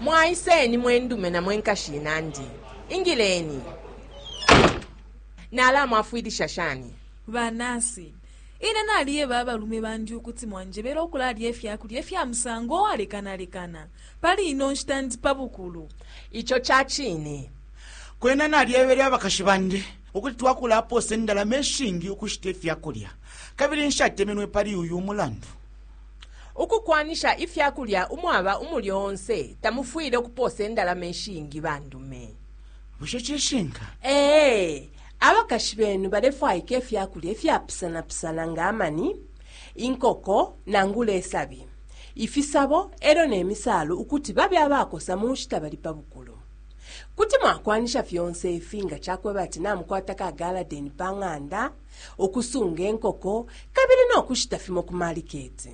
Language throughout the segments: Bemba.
mwaiseni mwendume na mwenkashi inandi ingileni nalamwafwilisha shani banasi ine naliyeba abalume bandi ukuti mwanjebera okulalya efyakulya efya musango owalekanalekana pali ino nshita ndi pa bukulu ico ca cine Kwena nalyebele abakashi bandi ukuti twakulapoosa indalama ishingi ukushita ifya kulya, kabili nshatemenwe pali uyu mulandu. Ukukwanisha ifya kulya umwaba umulyo onse tamufwile ukupoosa indalama ishingi ba ndume. Bushe cishinka? Ee. Abakashi benu balefwaika ifya kulya ifyapusanapusana nga amani, inkoko nangula isabi, ifisabo e lyo ne misaalu ukuti babe abakosa mu nshita bali pa bukulu. Kuti mwakwanisha fyonse ifi nga ca kweba ati namukwata ka galadeni pa ng'anda, ukusunga inkoko, kabili no kushita fimo ku maliketi.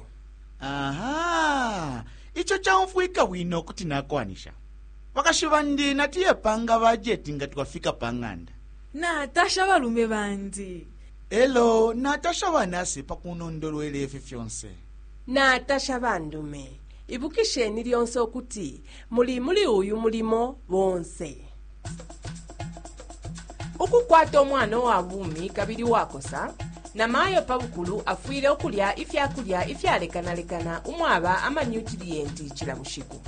Aha! Ico caumfwika bwino, kuti nakwanisha. Bakashi bandi natuye panga bajeti nga twafika pa ng'anda. Natasha abalume bandi. E lyo natasha banasi pa kunondolwela ifi fyonse. Natasha bandume. Ibukisheni lyonse ukuti muli muli uyu mulimo bonse ukukwata umwana uwa bumi kabili uwakosa na mayo pa bukulu afwile ukulya ifya kulya ifyalekanalekana umwaba amanyutiliyenti cila bushiku